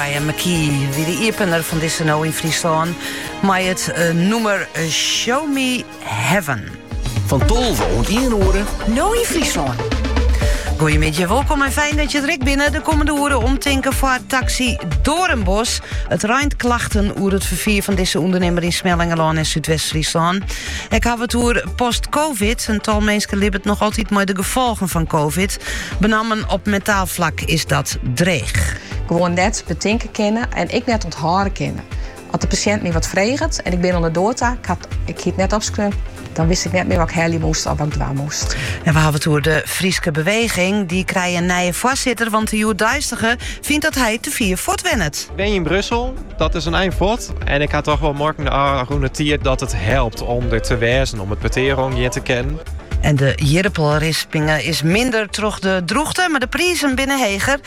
Maria McKee wie de iepener fan dizze No yn Fryslân mei it eh, nûmer eh, Show Me Heaven. Fan tolve oant ien oere. No yn Fryslân. Goeiemiddei, wolkom en fijn dat jo derby binne. De kommende oeren omtinken foar taksy Doornbos. It reint klachten oer it ferfier fan dizze ûndernimmer yn Smellingerlân en Súdwest-Fryslân. Ik haw it oer post-covid. In tal minsken libbet noch altyd mei de gefolgen fan covid. Benammen op mentaal flak is dat dreech. gewoan net betinke kinne en ek net ûnthâlde kinne. As de pasjint my wat freget en ik bin oan de doar ta, ik haw it hie net opskreaun, dan wist ik net mear wat ik helje moast of wat ik dwaan moast. En we hawwe it oer de Fryske Beweging. Dy krije in nije foarsitter, want de hjoeddeistige fynt dat hy te fier fuortwennet. Ik wenje yn Brussel, dat is in ein fuort. En ik ha troch wol muorken de ôfrûne tiid dat it helpt om der te wêzen, om it petear oangean te kinnen. En de jirpelrispinge is minder troch de drûchte, mar de prizen binne heger.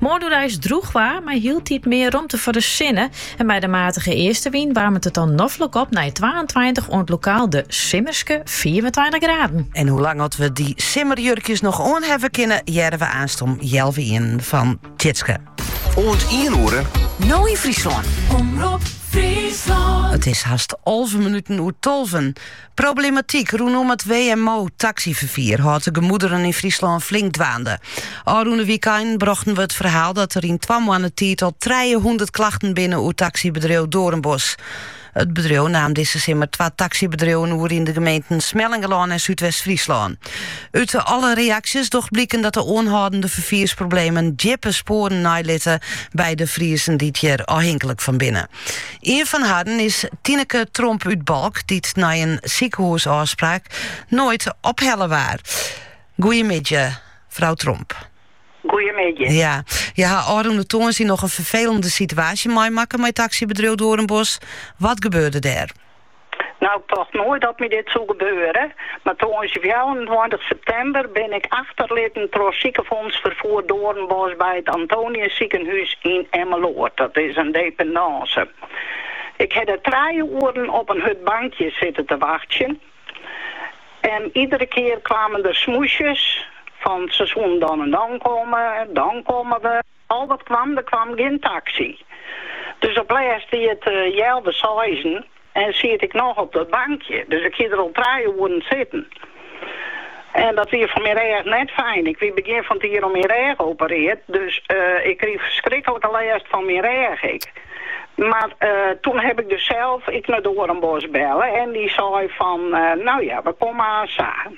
Moarn droech waar, mei hieltyd mear romte foar de sinne. En mei de matige eastenwyn waarmet it dan noflik op nei twaentweintich oant lokaal de simmerske fiifentweintich graden. En hoe lang oft we dy simmerjurkjes noch oanhawwe kinne, hearre we aanst om healwei ienen fan Tjitske. Oant ien oere, No yn Fryslân. Omrop Fryslân. It is hast alve minuten oer tolven. Problematyk rûnom it WMO-taksyferfier hâldt de gemoederen yn Fryslân flink dwaande. Ofrûne wykein brochten we it ferhaal dat der yn twa moanne tiid al trije hûndert klachten binne oer taksybedriuw Doornbos. It bedriuw naam dizze simmer twa taksybedriuwen oer yn de gemeenten Smellingerlân en Súdwest-Fryslân. Ut alle reaksjes docht bliken dat de oanhâldende ferfiersproblemen djippe spoaren neilitte by de Friezen dy't hjir ôfhinklik fan binne. Ien fan harren is Tineke Tromp út Balk, dy't nei in sikehûsôfspraak noait ophelle waard. Goeiemiddei, frou Tromp. Goeiemiddei. Ja, jo ha ôfrûne tongersdei noch in ferfelende situaasje meimakke mei taksybedriuw Doornbos. Wat gebeurde dêr? Nou, ik tocht noait dat my dit soe gebeure, mar tongersdei fjouwerentweintich septimber bin ik achterlitten troch sikefûnsferfier Doornbos by it Antonius sikehûs yn Emmeloord. Dat is in dependance. Ik ha der trije oeren op in hurd bankje sitte te wachtsjen en iedere kear kwamen der smoesjes fan se soene dan en dan komme, dan komme we. Al wat kwam, der kwam gjin taksy. Dus op lêst wie it healwei seizen en siet ik noch op dat bankje. Dus ik hie der al trije oeren sitten. En dat wie foar myn rêch net fijn. Ik wie begjin fan 't jier oan myn rêch operearre, dus ik krige ferskrikkelike lêst fan myn rêch ek. Mar toen heb ik dus sels ek nei Doornbos belle en dy sei fan, nou ja, we komme aansa.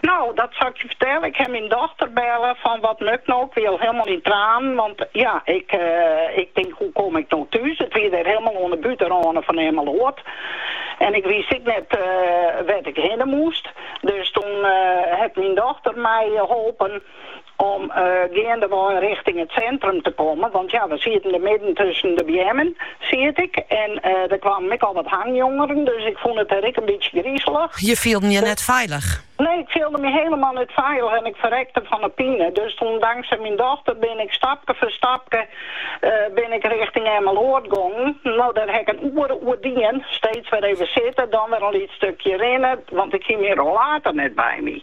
No, dat sil ik je fertelle. Ik haw myn dochter belle fan wat moat 'k no. Ik wie al hielendal yn tranen, want ja, ik ik tink hoe kom ik no thús. It wie dêr hielendal oan 'e bûtenrâne fan Emmeloard en ik wist ek net wêr't ik hinne moast. Dus toen hat myn dochter my holpen om geandewei richting it sintrum te kommen, want ja, we sieten dêr midden tusken de beammen, siet ik, en der kwamen ek al wat hangjongeren, dus ik fûn it dêr ek in bytsje grizelich. Je fielden je net feilich? Nee, ik fielde my helemaal net feilich en ik ferrekte fan 'e pine, dus toen dankzij myn dochter bin ik stapke foar stapke bin ik richting Emmeloord gongen. No, dêr ha ik in oere oer dien, steeds wer even sitte, dan wer in lyts stukje rinne, want ik hie myn rollator net by my.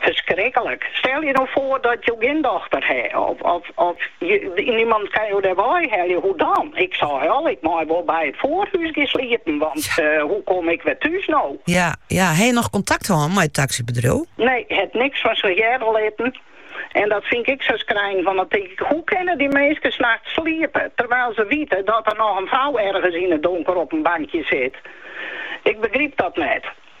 Ferskriklik. Stel je no foar dat jo gjin dochter ha of niemand kin jo dêr wei helje, hoe dan? Ik sei al, ik mei wol by it Voorhuys gean sliepen, want hoe kom ik wer thús no? Ja, ja. Ha je noch kontakt hân mei it taksybedriuw? Nee, hat niks fan sich hearre litten. En dat fyn ik sa skrijnend, want dan tink ik, hoe kinne dy minsken nachts sliepe terwyl se wite dat der noch in frou ergens yn it donker op in bankje sit? Ik begryp dat net.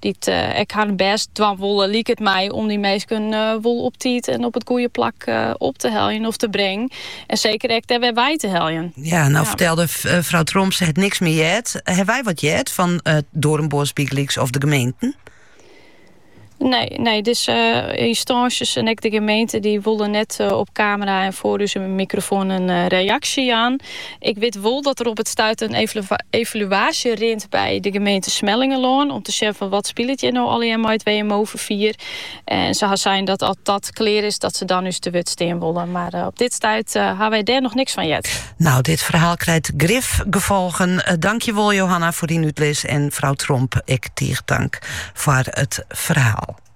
Dy't ek har bêst dwaan wolle, liket my, om dy minsken wol op tiid en op it goede plak op te heljen of te bringen. En seker ek dêr wer wei te heljen. Ja, nou fertelde frou Tromp, se het niks mear heard. Hawwe wy wat heard fan Dorenbos bygelyks of de gemeenten? Nee, nee, dizze ynstânsjes en ek de gemeente dy wolle net eh, op kamera en foar ús mikrofoan in eh, reaksje jaan. Ik wit wol dat der op it stuit in evaluaasje rint by de gemeente Smellingerlân om te sjen fan wat spilet hjir no allegear mei it WMO-ferfier. En se ha sein dat as dat klear is, dat se dan ús te wurd stean wolle. Mar eh, op dit stuit eh, ha wy dêr noch niks fan heard. Nou, dit ferhaal krijt grif gefolgen. Eh, dankjewol, Johanna, foar dyn útlis. En frou Tromp, ek tige dank foar it ferhaal.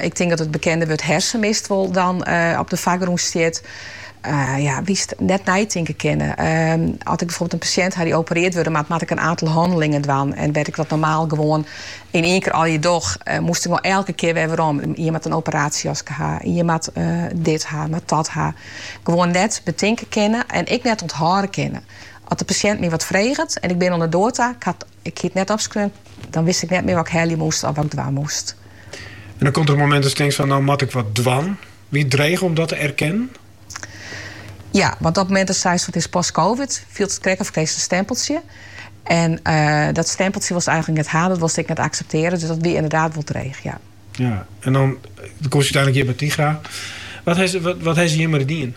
Ik tink dat it bekende wurd hersenmist wol dan op de foargrûn stiet. Ja, wis, net neitinke kinne. As ik byfoarbeeld in pasjint ha dy't opereard wurde moat, moat ik in aantal hannelingen dwaan. En wêr't ik dat normaal gewoan yn ien kear allegear doch, moast ik gewoan elke kear wer werom. Ien moat in operaasjejaske ha, ien moat dit ha, moat dat ha. Gewoan net betinke kinne en ek net ûnthâlde kinne. As de pasjint my wat freget en ik bin oan 'e doar ta, Ik hie it net opskreaun. Dan wist ik net mear wat ik helje moast of wat ik dwaan moast. En dan komt der in momint datst tinkt fan, no moat ik wat dwaan. Wie it dreech om dat te erkennen? Ja, want op it momint datst seist fan it is post-covid, fielt it krekt of krijst in stempeltsje. En dat stempeltsje wolst eigenlik net ha, dat wolst ek net akseptearje. Dus dat wie inderdaad wol dreech, ja. Ja, en dan komst úteinlik hjir by Tigra. Wat hest hjir mar dien?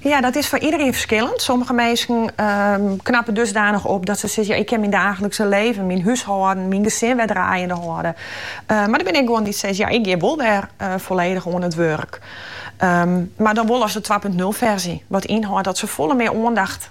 Ja, dat is foar iedereen ferskillend. Sommige minsken knappe dusdanich op dat se sizze, ik kin myn daachlikse libben, myn húshâlden, myn gesin wer draaiende hâlde. Mar der binne ek guon dy't sizze, ja, ik gean wol wer folledich oan it wurk. Mar dan wol as de twa punt nul ferzje, wat ynhâldt dat se folle mear oandacht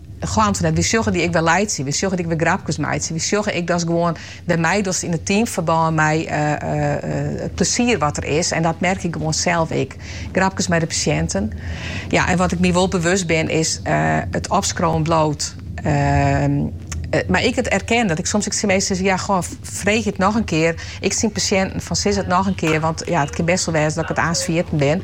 Chanteren dat. Wy sjogge dy ek wer laitsje. Wy sjogge dy ek wer grapkes meitsje. Wy sjogge ek datst gewoan wer meidost yn it teamferbân mei it plesier wat der is. En dat merk ik gewoan sels ek. Grapkes mei de pasjinten. Ja, en wat ik my wol bewust bin is it opskriuwen bliuwt. Mar ek it erkennen dat ik soms ek tsjin minsken sizze, ja, goh, freegje it noch in kear. Ek tsjin pasjinten fan, sis it noch in kear, want ja, it kin bêst wol wêze dat ik it aanst ferjitten bin.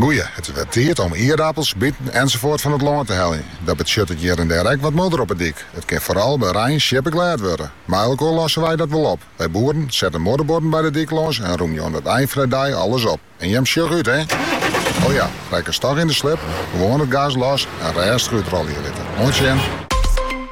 Goeie, it is wer tiid om ierdapels, biten ensafoart fan it lân te heljen. Dat betsjuttet hjir en dêr ek wat modder op 'e dyk. It kin foaral by rein sjippeglêd wurde. Mei elkoar losse wy dat wol op. Wy boeren sette modderbuorden by de dyk lâns en rûmje oan it ein fan 'e dei alles op. En jim sjoch út, hé! O ja, rekkest dochs yn de slip, gewoan it gas los en rêstich útrolje litte. Oant sjen!